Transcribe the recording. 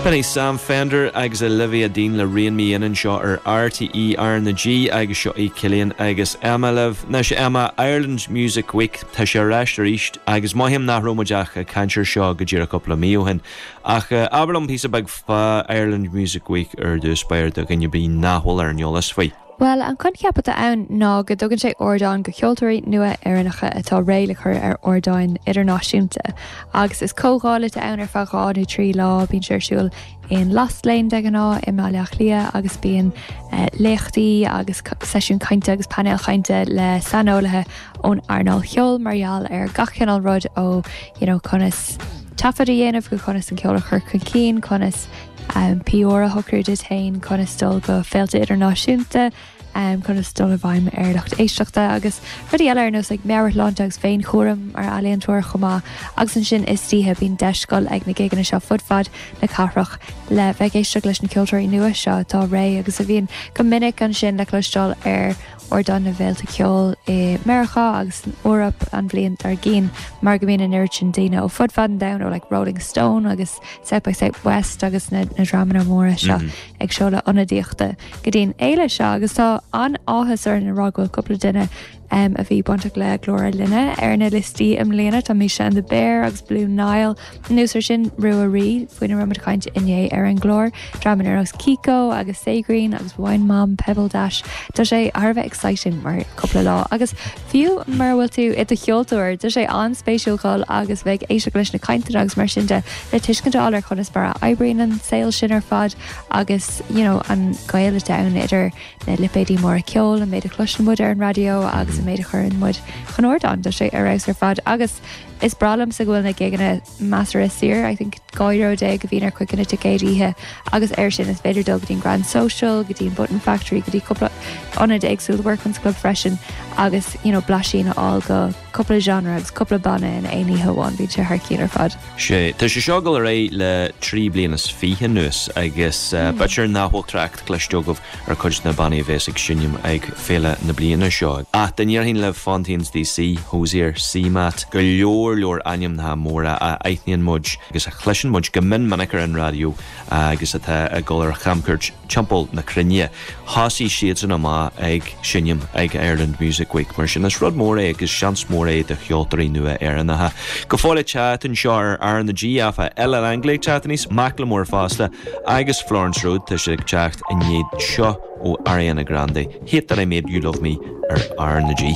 Beidh Sam Fender agus Olivia Dean le Rein Me In anseo ar RTÉ RnaG agus seo é Cillian agus Emma libh. Now so Emma, Ireland Music Week, tá sé ar ais arís agus mothaím nach raibh muid ach ag caint air seo go díreach cúpla mí ó shin. Ach abair liom píosa beag fá Ireland Music Week ar dtús, b'fhéidir do dhaoine nach bhfuil ar an eolas faoi. Bhuel, an coincheap atá ann ná go dtugann sé ardán do cheoltóirí nua Éireannacha atá réidh le cur ar ardáin idirnáisiúnta. Agus is comhdháil atá ann ar feadh dhá nó trí lá, bíonn sé ar siúl in Lost Lane de ghnáth i mBaile Átha Cliath agus bíonn léachtaí agus seisiúin cainte agus painéil chainte le saineolaithe ón earnáil cheoil mar gheall ar gach cineál rud ó, you know, conas taifead a dhéanamh go conas an ceol a chur chun cinn, conas. tour a shocrú duit féin conas dul go féilte idirnáisiúnta, conas dul i bhfeidhm ar lucht éisteachta agus rudaí eile ar nós meabhairshláinte agus féinchúram mar ealaíontóir chomh maith. Agus ansin istoíche, bíonn deis dul ag na gigeanna seo fud fad na cathrach le bheith ag éisteacht leis na ceoltóirí nua seo atá réidh agus a bhíonn go minic ansin le cloisteáil ar ardán na bhféilte ceoil i Meiriceá agus san Eoraip an bhliain dár gcionn mar go mbíonn an oiread sin daoine ó fud fad an domhain, ó like Rolling Stone agus. South by Southwest agus na dreamanna móra seo ag seoladh ionadaíochta go dtí an fhéile seo agus tá an-áthas orainn a rá go bhfuil cúpla duine a bhí bainteach leis an gclár linne ar na liostaí i mbliana. Tá Misha and the Bear agus Blue Niall anuas ar sin, Ruairí, faoina raibh muid ag caint inné ar an gclár, Dramanna Rós, Kiko agus Saogreen agus Wine Mom, Pebbledash. Tá sé thar a bheith exciting mar cúpla lá agus Fiú mura bhfuil tú i do cheoltóir, tá sé an-spéisiúil dul agus bheith ag éisteacht leis na cainteanna agus mar sin de le tuiscint a fháil ar conas mar a oibríonn an saol sin ar fad agus you know an gaol atá ann idir na lipéidí móra ceoil, an méid a chloiseann muid ar an raidió agus an méid a chuireann muid chun ardáin. Tá sé ar fheabhas ar fad agus is breá liomsa go bhfuil na gigeanna measartha saor, I think €2 déag a bhíonn ar chuid de na ticéid oíche agus air sin is féidir dul go dtí an Grand Social, go dtí an Button Factory, go dtí cúpla ionad éagsúil, Workman's Club freisin agus you know blaisín a fháil de cúpla genre agus cúpla banna in aon oíche amháin, bíonn sé thar cionn ar fad. Sea, tá sé seo ag dul ar aghaidh le trí bliana is fiche anuas agus b'fhéidir nach bhfuil trácht cloiste agaibh. ar chuid de na bannaí a bheas ag seinm ag féile na bliana seo. Ach dá ndéarfainn libh Fontaines DC, Hozier, CMAT, go leor leor ainmneacha móra a aithníonn muid agus a chloiseann muid go mion minic ar an raidió agus atá ag dul ar chamcuairt timpeall na cruinne, thosaigh siadsan amach ag seinm ag Ireland Music Week. Mar sin, is rud mór é agus seans mór é do cheoltóirí nua Éireannacha. Go fóill ag teacht anseo ar R na G, áfach, Ella Langley ag teacht aníos, Macklemore fosta, Agus Florence Road, tá siad ag teacht i ndiaidh seo ó Ariana Grande, Hate That I Made You Love Me ar R na G.